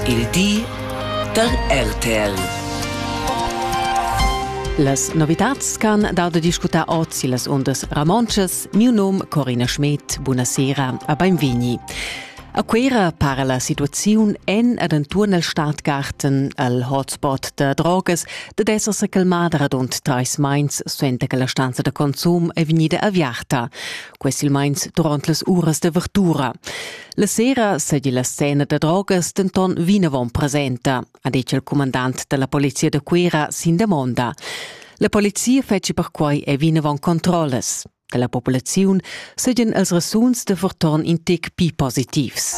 Il di da RTL. Las novitads ch'han dau da discutar oz illas undas ramontschas, miu num Corina Schmidt, buonasera a beinvegni. A Cuera para la situaziun en ed enturn el Stadtgarten al hotspot da drogas da esser se calmada radund treis meins suenter che la stanza da consum è vegnida aviarta. quei silmeins duront las uras de vertura. La sera seigi la scena da drogas denton vinavon presenta, ha detg il comandant dalla polizia da Cuera sin demonda. La polizia fetschi perquei e vinavon controllas. Dalla populaziun seigien els resuns de verton in tec pi positivs.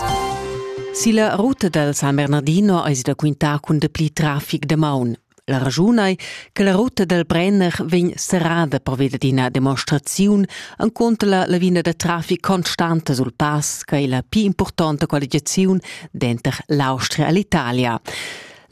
Silla ruta dal San Bernardino eis da quintar cun dapli trafic de maun. La raschun ei che la ruta dal Brenner vegn serrada pervia dad ina demonstraziun enconter la lavina da traffic constanta sul pass che ei la pli impurtonta qualificaziun denter l'Austria e l'Italia.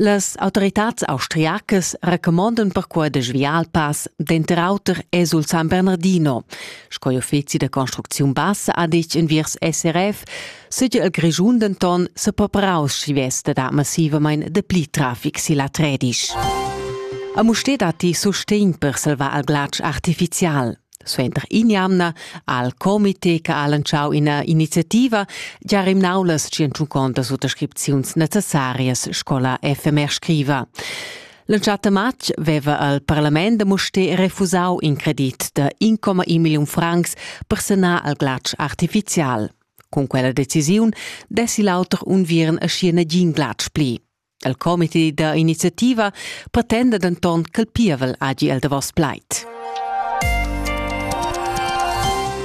Las autoritads austriacas recomandan perquai da sviar il pass denter auter e sul San Bernardino. Sco il uffizi da construcziun bassa ha detg enviers SRF, Sigi el Grischun denton sepapraus schi vesta da massivamain dapli traffic silla Tredisch. A Musté datti sustegn per salvar al glatsch artificial. Suenter in'jamna al comité che ha lanciau ina iniziativa gia rimnau las tschentucontas suttascripziuns necessarias scola FMR scriva. Lanciata matg veva al parlament da Musté refusau in credit da 1,1 milliun francs per sanar al glatsch artificial. Cun quella decisiun dessi l'auter unviern aschi nagin glatsch pli. Il comité da iniziativa pretenda denton ch'el pievel hagi el davos plaid.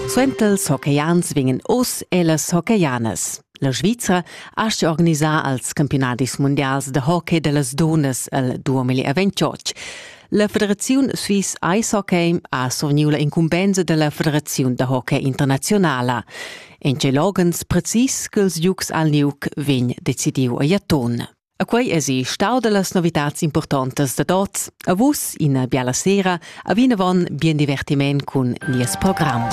Suenter ils hockeyans vegnan oz e las hockeyans. La Svizra ha organisà als campionadis mundials da hockey da las dunnas il 2028. La federaziun Swiss Ice Hockey ha surniu la incumbensa dalla federaziun da hockey internazionala. En tgei loghens precis ch'ils giugs al Nuc vegn decidiu a Jaton. A quei esi stau dallas novitads importantas da tots. A vus ina biala sera, a vinavon bien divertiment cun nies program.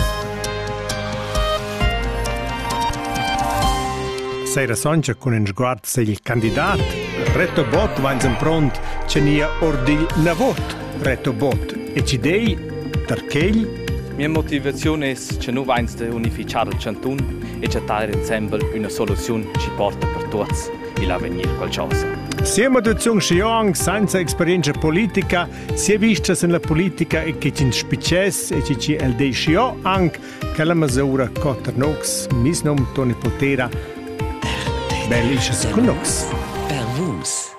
Sera soncha cun in sguard Se il candidat Reto Bott vainsen pront tschenia ordi na vot Reto Bott e ci dei perchegl Mia motivaziun es che nu vainst unifichar il chantun e chattar insembel üna soluziun chi porta per tuots il avegnir qualchosa. Sia motivaziun schi anc senza experienza politica, sia vistas en la politica e che ci spicess e ci el de schi anche Quella mesura co Ternox, mis nom Toni Potera, bel isches cun nox. Per vus.